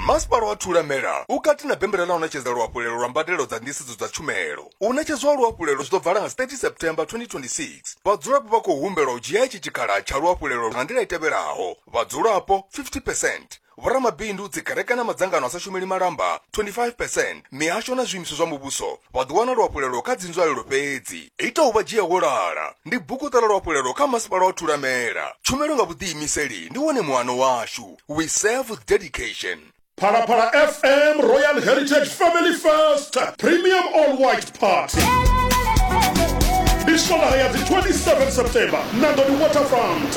masipala wa thulamela u kati na bembela ḽa u ṋetshedza luhafhulelo lwa mbadelo dza nḓisedzo dza tshumelo u ṋetshedzwa ha luhafhulelo zwi ḓo bvala nga 30 september 2026 vhadzulapo vha khou humbelwa u dzhia itshi tshikhala tsha luhafhulelo nga nḓila i tevhelaho vhadzulapo 50 percent vhoramabindu dzikereke na madzangano a sa shumeli malamba 25 percent mihasho na zwiimiswa zwa muvhuso vha ḓo wana luafhulelo kha dzinzwalelo fhedzi. Ita u vha dzhia wo lala ndi buku ṱala luafhulelo kha masipala wa Thulamela. Tshumelo nga vhuḓiimiseli ndi wone muano washu. We serve with dedication. Phalaphala FM Royal Heritage Family First Premium All White Party ndi swondaha ya dzi 27 September Nandoni Waterfront.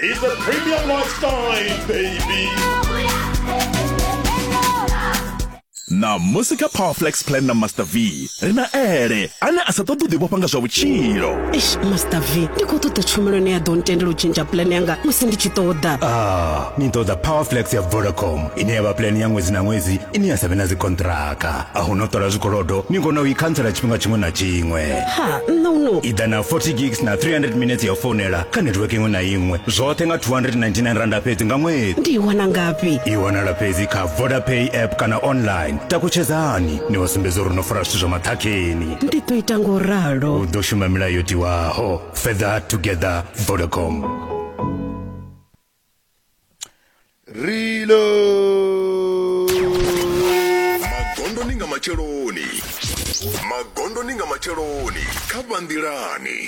He's the premium lifestyle, baby. na musi kha powerflex plan na master v ri na ele ane a sa ṱoḓi u ḓivhofha nga zwa vhutshilo eish master v ndi khou ṱoḓa tshumelo ine ya ḓo ntendela u tshintsha plan yanga musi ndi tshi ṱoḓa ah ni ṱoḓa powerflex ya vodacom ine ya vha plan ya ṅwedzi na ṅwedzi ine ya sa vhe na dzikontraka a hu no ṱola zwikolodo ni kona u i khantsela tshifhinga tshiṅwe na tshiṅwe ha nṋa uno i ḓa na 40 gigs na 300 minutes ya founela kha network iṅwe na iṅwe zwoṱhe nga 299 randa fhedzi nga ṅwedzi ndi i wana ngafhi i wanala fhedzi kha vodapay app kana online takutshedzani ni vha sumbedza uri no fara zwithu zwa maṱhakheni ndi ḓo ita ngo ralo u ḓo shuma milayo yo tiwaho fedha together vodacom reload magondoni nga matsheloni magondoni nga matsheloni kha vhanḓilani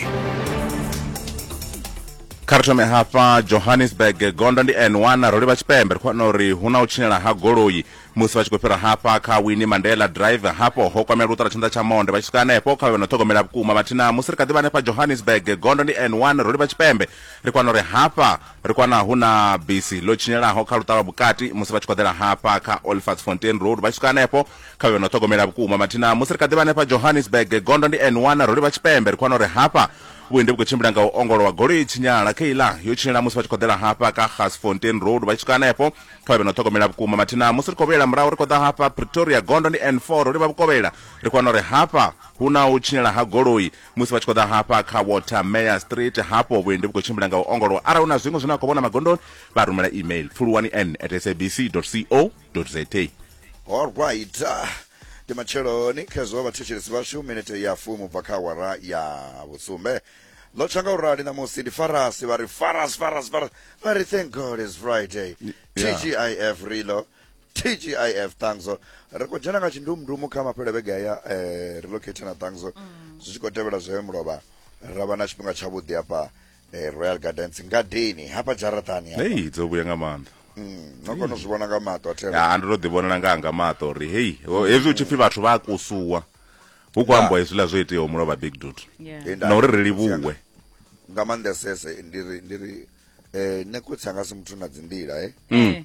kha ri thome hafha johannesburg gondo ndi n1 ro livha tshipembe ri khou vhona uri hu na u tshinyala ha goloi musi vha tshi khou fhira hafha kha winnie mandela drive hafho ho kwamela luṱara tshanḓa tsha monde vha tshi swika hanefho kha vhe no ṱhogomela vhukuma vhathina musi ri kha ḓi vha hanefha johannesburg gondo ndi n1 ro livha tshipembe Ri kwana uri hafha ri kwana hu na bisi ḽo tshinyelaho kha luṱa lwa vhukati musi vha tshi khoḓela hafha kha Olifantsfontein Road vha tshi swika hanefho kha vhe no ṱhogomela vhukuma mathina musi ri kha ḓi vha hanefha Johannesburg gondo ndi N1 ro livha tshipembe ri kwana uri hafha vhuendi vhu khou tshimbila nga u ongolowa goloi tshinyala kheiḽa yo tshinyela musi vha tshi khoḓela hafha kha Gasfontein Road vha tshi swika hanefho kha vhe no ṱhogomela vhukuma mathina musi ri khou vhuyela murahu ri khou ḓa hafha Pretoria gondo ndi N4 ro livha vhukovhela ri kwana uri hafha hu na u tshinyela ha goloi musi vha tshi khou ḓa hafha kha water mayor street hafho vhuendi vhu khou tshimbila nga u ongolowa arali hu na zwiṅwe zwine a khou vhona magondoni vha rumela email pfuluwani n at sabc co za allright ah, ndi matsheloni khezwo vhathetshelesi vhashu minete ya fumu bva kha awara ya vhusumbe ḽo tsha nga u rali ṋamusi ndi farasi vha ri faras faras faras vha ri thank god is friday Yeah. tgif rilo tgif ṱangzo ri khou dzhena nga tshindumndumu kha mafhelo vhege ya eh, relocate na ṱangzo mm. zwi tshi khou tevhela zwe mulovha ra vha na tshifhinga tshavhuḓi hafha eh, royal gardens ngadeni hafha dzharaṱani hei dzo vhuya nga maanḓa mm, no kona u zwi vhona nga maṱo a ndo to ḓi vhonela nga nga maṱo uri hei hezwi u tshi pfi vhathu vha a kusuwa hu khou ambiwa hezwiḽa zwo iteaho mulovha big dut na uri ri livhuwe nga maanḓesese ndi ri ndi ri um eh, nekotsi anga si muthu na dzinḓila e eh? mm.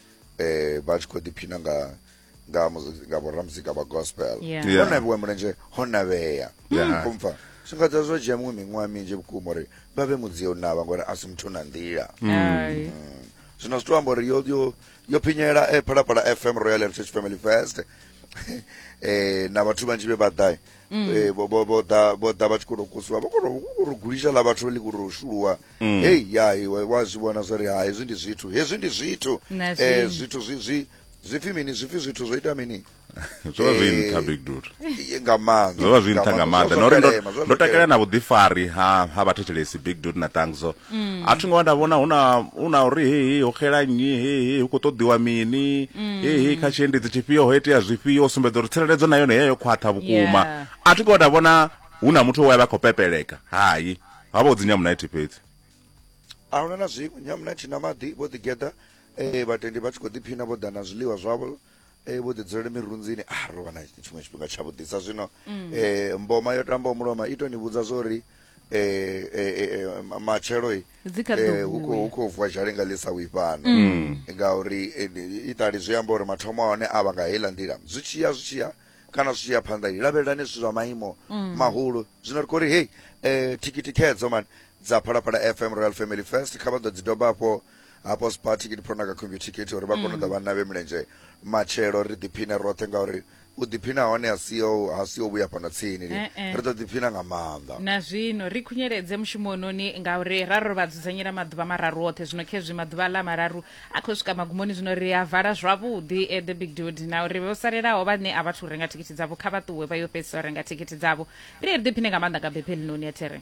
eh vha tshi khou ḓiphina nga nga nga vhoramuzika vha gospel yeah. yeah. navhiwa mulenzhe ho navhea yeah. kumfa zwi nga dza zwo dzhia miṅwe miṅwaha minzhi vhukuma uri vha vhe mudzio navha ngori a si muthu na nḓila mm. mm. zwino zwi to amba uri yo yo yo phinyela e eh, phalaphala fm royal heritage family fest eh na vhathu vhanzhi vhe vha ḓai Mm. Eh, vho vho vho ḓa vho ḓa vha tshi kono kusiwa vho kono uri gulisha ḽa vhathu ḽi kuri shuluwa mm. hey ya iwe wa zwi vhona zwa ri ha hezwi ndi zwithu hezwi ndi zwithu eh zwithu zwi zwi zwipfi mini zwipfi zwithu zwo ita mini zwo vha zwi eh, nṱha big dude nga maanḓa zwo vha zwi nṱha nga maanḓa na uri ndo takalela na vhuḓifari ha ha vhathetshelesi big dude na tangzo mm. a thi ngo vha nda vhona huna huna uri he he ho xela nnyi he he hu kho ṱoḓiwa mini mm. he he kha tshiendedzi tshifhio ho itea zwifhio sumbedza uri tsireledzo na yone heyo khwaṱha vhukuma yeah. a thi ngo vha nda vhona huna muthu we vha khou pepeleka hayi ha vha u dzinya munaithi fhedzi a huna na zwiṅwe nyamunaithi na maḓi vho ḓigeḓa um eh, vhatendi vha tshi khou ḓiphina vho ḓa na zwiḽiwa zwavho Eh, vho ḓi dzulele mirunzini a ri wana tshiṅwe tshifhinga tshavhuḓisa zwino um mboma yo tambaho muloma i to ni vhudza zwa uri um matshelo hu khou vuwa zhale nga ḽisa wi fhano mm. ngauri i ṱali zwi amba uri mathomo a hone a vha nga heiḽa nḓila zwi tshi ya zwi tshi ya kana zwi tshi ya phanḓa i lavhelelani zwithu zwa maimo mm. mahulu zwino ri khou ri hei um thikhithi khedzo mani dza phalaphala fm royal family first kha vha ḓo dzi doba afho hafho spar ticket pro na kha computer ticket uri vha kone u ḓa mm. vhanna vhe mulenzhe matshelo ri ḓiphine roṱhe ngauri u ḓiphina hone ha si ha si vhuya fhano tsini eh, eh. ri ḓo ḓiphina nga maanḓa na zwino ri khunyeledze mushumo ononi ngauri ra ro vha dzudzanyela maḓuvha mararu oṱhe zwino khezwi maḓuvha ḽa mararu a khou swika magumoni zwino ri a vala zwavhuḓi eh, the big dude na uri vho salelaho vhane a vhathu renga thikhithi dzavho kha vha ṱuwe vha yo fhedzisa u renga thikhithi dzavho ri ri ḓiphine nga maanḓa nga bephelinoni ya there